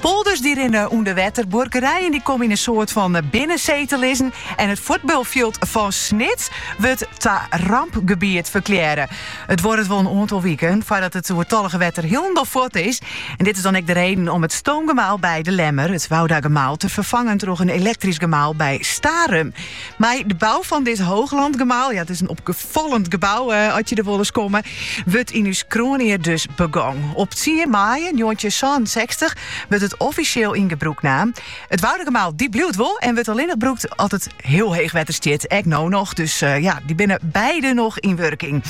Polders die rinne ûnder wetter, buorkerijen die komme yn in soart fan binnensee te lizzen en it fuotbalfjild fan Snits wurdt ta rampgebiet ferklearre. It duorret wol in oantal wiken foardat it oertallige wetter hielendal fuort is. En dit is dan ek de reden om it stoomgemaal by De Lemmer, it Woudagemaal, te ferfangen troch in elektrysk gemaal by Starum. Mei de bou fan dit Hooglandgemaal, ja, it is in opfallend gebou, ast je der wolris komme, wurdt yn ús kroanjier dus begong. Op tsien maaie njoggentjinhûndertsânensechstich wurdt it offisjeel yn gebrûk naam. It Woudagemaal dy bliuwt wol en wurdt allinnich brûkt as it hiel heech wetter stiet, ek no noch. Dus eh, ja, dy binne beide noch yn wurking.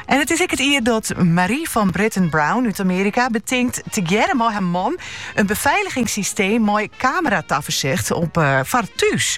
En it is ek it jier dat Marie van Brittan Brown út Amerika betinkt tegearre mei haar man in beveiligingssysteem mei kameratafersicht op eh, foar thús.